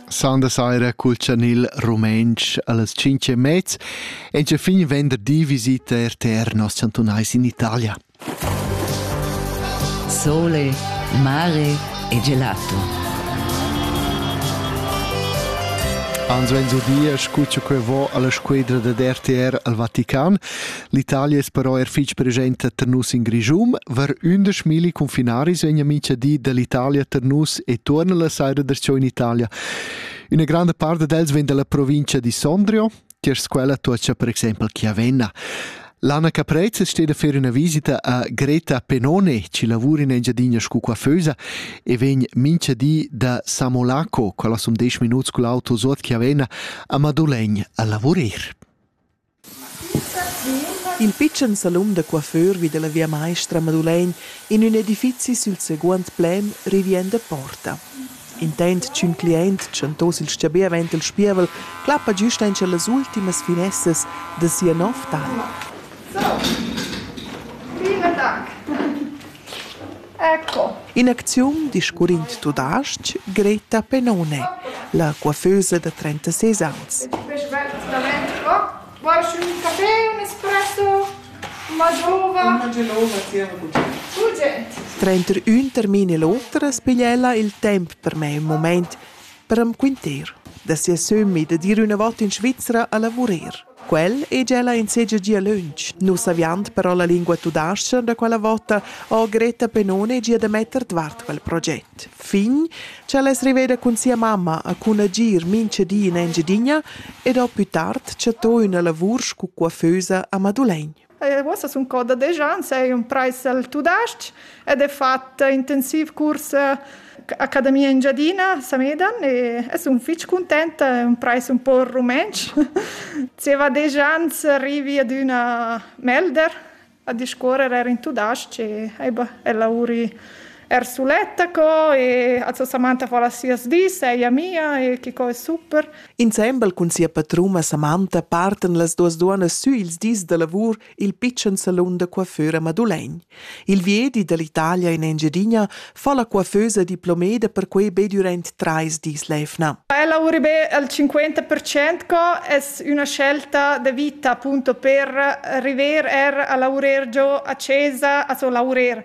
Sanda saira cul chanil rumentsch allas 5 e mez. En che fin venderdi visita RTR nos chantunais in Italia. Sole, mare e gelato. Ans venzu dia scuccio que vo alla squedra ded RTR al Vatican. L'Italia es però er fich presenta tar nus in Grischun. Var ündesch milli confinaris vegna mincha di dall'Italia tar nus e tuorna la saira darcheu in Italia. Üna granda part d'els vegn dalla provincia di Sondrio, tier squela tuocha per exempel Chiavenna. L'Anna Caprez steht a fare una visita a Greta Penone, ci lavora in Engiadina scu coiffeusa e vegn mincha di da Samolaco, quella som 10 minuts cu l'auto sot Chiavenna, a Madolegn a lavorer. In pitschen salun da coiffeur vi dalla via maestra Madulegn in ün edifizi sül seguond plan rivien da porta. Intent ch'ün cliaint tschantoss il stabì avaunt il spievel clappa güst aint las ultimas finessas da sia nouv talp. Vielen Dank! Ecco. In acziun discurrind tudestg, Greta Pennone, la coiffeusa da trentaseis ans. Davent qua, Qualchün café, un espresso, ma giova? Una gelova tier Gudrun. Tge? Tranter ün termin e l'oter as piglia ella il temp per mai un moment per am quinter da sia sömmi da dir üna vota in Svizra a lavurer. Quel è ella in segia gia lönch. Nus aviand però la lingua tudascha da quella vota ho Greta Penone gia da metter dvart quel proget. Fin cha l'es riveda cun sia mamma a cun agir mincha di in Engiadina ed ho più tard chattò üna lavur scu coiffeusa a Madulegn. Eh, uossa sun cò da desch ans, eir imprais al tudais-ch ed he fat intensiv curs eh, Accademia Engiadina, Samedan e, e sun fich cuntent, ho imprais ün po rumentsch. Zieva desch ans arrivi ad üna melder a discuorrer eir in tudais-ch e ella uri er suletta co e also Samantha fa las sias dis, ella mia e chi co è super. Insembel cun sia patruma Samantha partan las duas duonas sü ils dis da lavur il pitschen salun da coiffeur a Madulegn. Il viedi dall'Italia in Engiadina fa la coiffeusa diplomeda perquei be durant trais dis l'evna. Ella lavuri be al 50% co es üna scelta de vita appunto per arriver er a lavurer giò a Cesa, also lavurer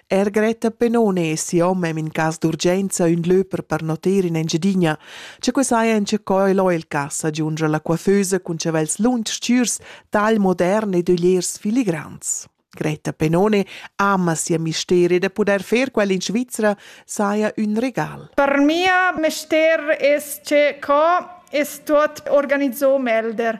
Er Greta Penone e siu hom ein in cass d'urgenza ün lö per pernotter in Engiadina, che quei saja en co el ho il cass, agiungia la coiffeusa cun chavels lunsch stürs, tal modern ed ögliers filigrans. Greta Penone ama sia mister e da poder fer quel in Svizra saja ün regal. Per mia mister es che co es tuot organizzo Melder.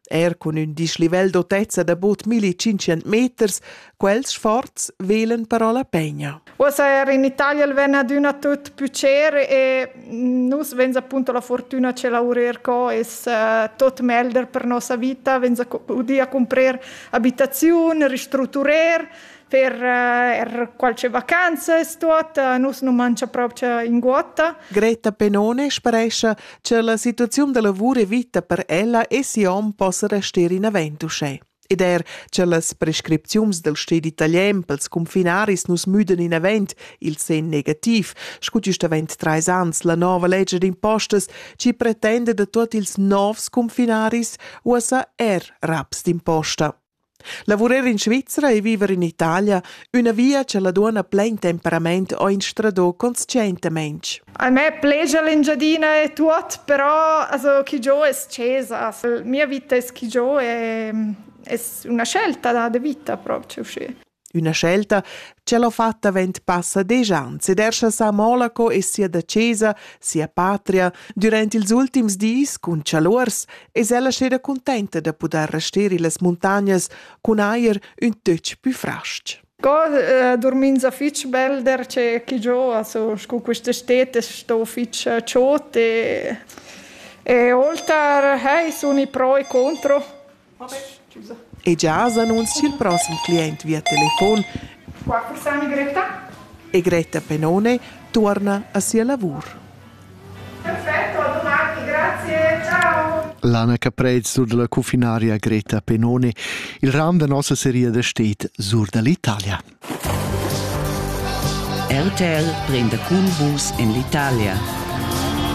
Er cun ün dislivel d'autezza da bod 1500 meters, quels sforz velen però la pegna. Uossa er in Italia il ven adüna tut pucer e nus venz appunto la fortuna ce laurer co es uh, tot melder per nossa vita, venz udia comprer abitaziun, ristruturer per er qualche vacanzas tuot, nus nu mangia proprio inguotta. Greta Penone sparescha che la situaziun da lavur e vita per ella e si hom possa rester in avent uschè. Ed er che las prescripziuns del sted italian pels confinaris nus müden in avent il sen negativ, scu giust avent trais ans la nova legge d'impostas ci pretende da tuot ils novs confinaris uossa er raps d'imposta. Lavurar in Svizra e viver in Italia, üna via cha la duonna plain temperament ho instradò consciaintamaing. A me plegia l'Engiadina e tuot, però also chi giò es scesa. Mia vita es chi giò e es üna scelta da vita proprio uscì. Üna scelta ch'el ho fat avant passa desch ans ed er cha sa Monaco e sia dacesa, sia patria, dürant ils ultims dis cun chaluors es ella steda cuntenta da pudair rester illas muntagnas cun eir ün töch pü fras-ch. Sco eh, dormins a fich belder che chi giò, also scu quista stet es sto fich eh, chod e e olter hey, suni pro e contro. E gia has annunzi ch'il prossem client via telefon e Greta Penone tuorna a sia lavur. Perfetto, a domani, grazie, ciao. Lana Caprez sur dalla cufinaria Greta Penone. Il ram da nossa seria da stet sur dall'Italia. RTL prende cun vus in l'Italia.